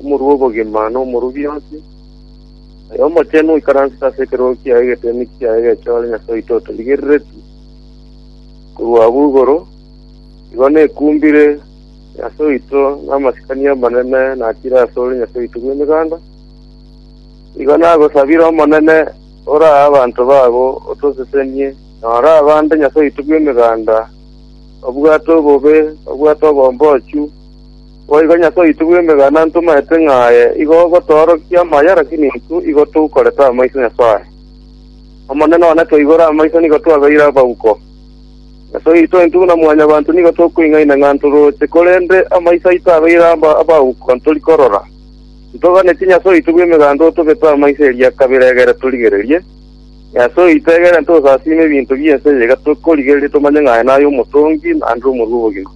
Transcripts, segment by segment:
Omorua obogima n'omoruo bionsi, aye omochenu oikaransete ase ekerogo kiaye egetemi kiaye egechore, Nyasae oito otorigereretie korwa abwo igoro, igo nekumbire Nyasae oito namasikani amanene natire asore Nyasae oito bw'emeganda. Igo nagosabire Omonene orae abanto babo otosesenie, na orae abande Nyasae oito bw'emeganda, obwate obobe, obwate obombochu, Boigo Nyasae oito bw'emegana ntomaete ng'a aye igo ogotoorokia amaya, lakini intwe igo tokorete amaiso Nyasae. Omonene one toigore amaiso nigo twabeire abauko. Nyasae oito intwe buna mwanyabanto nigo tokoing'aina ng'a ntoroche, korende amaiso aito abeire aba abauko ntori korora. Ntoganetie Nyasae oito bw'emeganda otobete amaiso eria kabere egere torigererie. Nyasae oito egere ntosasiime ebinto bi'ense eye iga tokorigereria tomanye ng'a aye naye Omotongi naende Omorua obogima.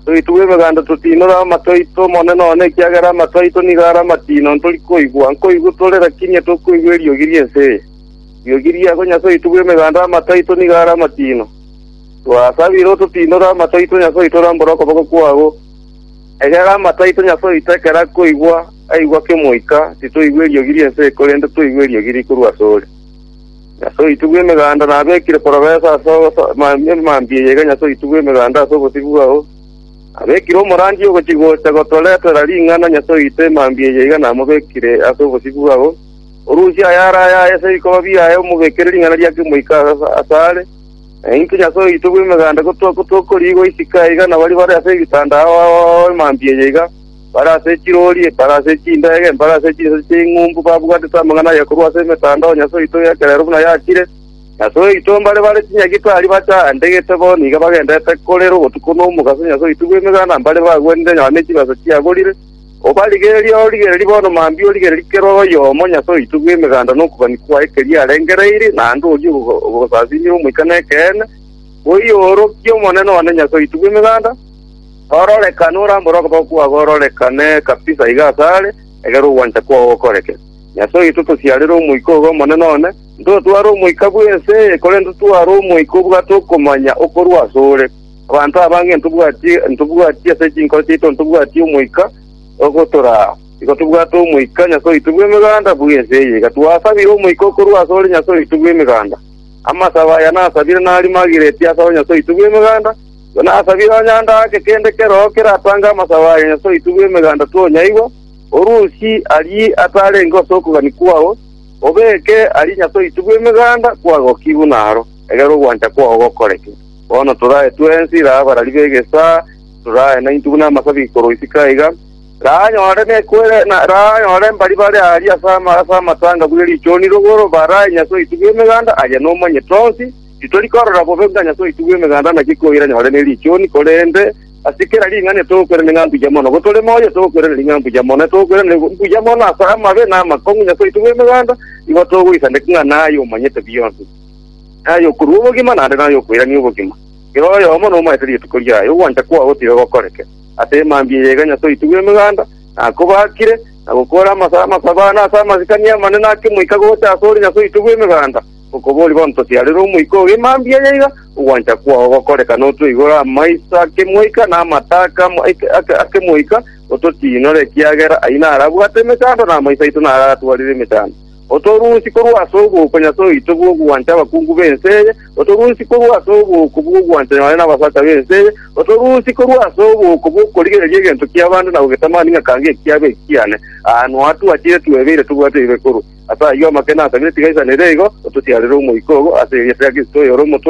Toitwe emeganda totinore amato aito one none, ekiagera amato aito nigo are amatino, ntori koigwa. Nkoigwe tore, lakini etokoigwa eriogi ri'ense eye. Riogi riabo Nyasae oito bw'emeganda amato aito nigo are amatino. Twasabire ototinore amato aito Nyasae oito orambore okoboko kwao, egera amato aito Nyasae oito ekero akoigwa aigwe ake Omoika, titoigwa eriogi ri'ense eye, korende toigwe eriogi rikorwa asore. Nyasae oitwe bw'Emeganda nabekire porobesa ase emambia eye iga Nyasae oitwe bw'Emeganda ase obosibwa bwao nabekire omorandia ogochi‐gocha gotoretera ring'ana Nyasae oitwe emambia eye iga namobekire ase obosibwa bwao. Orusia ayare ayaye ase ebikoba biaye omobekere ring'ana ria kemoika asare, na intwe Nyasae oitwe bw'Emeganda gotokoriigwa isiko iga nabaria bare ase ebitanda ao emambia eye iga. Barase echirori, ebarase echindege, ebarase chinsa ching'umbu babwatete amang'ana aye korwa ase emetandao ya Nyasae oito y'ekerero buna yachire. Nyasae oito mbare bare chinyagitari bachaandegete bo nigo bagendete korera obotuko na omogaso Nyasae oito bw'emeganda mbare bagwenire nyuma ne chibesa chiaborire. Obarigererie origererie bono mambia origererie kera oyomo Nyasae oito bw'emeganda na okobani kwaye keria arengereire naende orie ogosasimera omoika nekeene. Oiyo orokia Omonene one Nyasae oito bw'emeganda. Ororekane orambore okoboko kwabo ororekane kabisa iga asare, egera ogwancha kwao gokoreke. Nyasae oito tosiarire Omoika ogo omonene one, ntotware omoika bw'ense eye, korende totware Omoika obwate okomanya okorwa asore. Abanto abange ntobwatie ntobwatie ase chinkoro chiaito ntobwatie Omoika ogotoraa. Igo tobwate Omoika, Nyasae oito bw'emeganda, bw'ense eye iga. Twasabire Omoika okorwa asore, Nyasae oito bw'emeganda. Amasabo aya nasabire nari magireti asore, Nyasae oito bw'emeganda. Inasabire onye ande ake kende keroo keratange amasabo aye Nyasae oito bw'Emeganda twonyaigwa, orusie arie atarenge ase okogania kwao, obeke arie Nyasae oito bw'Emeganda kwagokigwe naro, egere ogwancha kwao gokoreke. Bono torae twensi, ira abarari b'egesaa, torae naintwe buna amasabi korwa isiko aiga, ranyore mbari bare aria ase amatanga bw'erichuniri, baraae Nyasae oito bw'Emeganda, aye nomanyete onsi, Titori korora bobe ng'a Nyasae oitwe bw'Emeganda anachie koira nyore ne richuni, korende ase kera ring'ana etogokwerania ng'a mbuya mono. Go tore moyo, etogokwerania ng'a mbuya mono, etogokwerania mbuya mono ase amabe na amakong'u Nyasae oitwe bw'Emeganda, nigo togoisaneka ng'a naye omanyete bionsi, naye okorua obogima, naende naye okoirania obogima. Kera oyomo nomaete rituko riaye, ogwancha kwao tiga gokoreke. Ase emambia eye iga Nyasae oitwe bw'Emeganda nakobaakire, na gokora amasa amasabana ase amasikani amanene ake moika gocha asore Nyasae oitwe bw'Emeganda, Okoboria bontosi arere omoika oge mambia aya iga, ogwancha kwao gokoreka notwe igoro amaiso ake moika na amataka ake moika, ototiinore, ekiagera ayio narabwate emechando na amaiso aito nararatwarire emechando. Otorusie korwa ase oboko Nyasae oito bw'ogwancha abakungu b'ense eye, otorusie korwa ase oboko bw'ogwancha nyabanto na abasacha b'ense eye, otorusie korwa ase oboko bw'okorigereria egento ki'abande na gogetamani ng'a kanga ekiabo ekiane, aa, noa twachire twebeire tobwate ebibe korwa. Ase ayio amakene asabire tiga aisanere igo, ototiarere omoika obo ase egesaku kia Kristo oyore omotoria.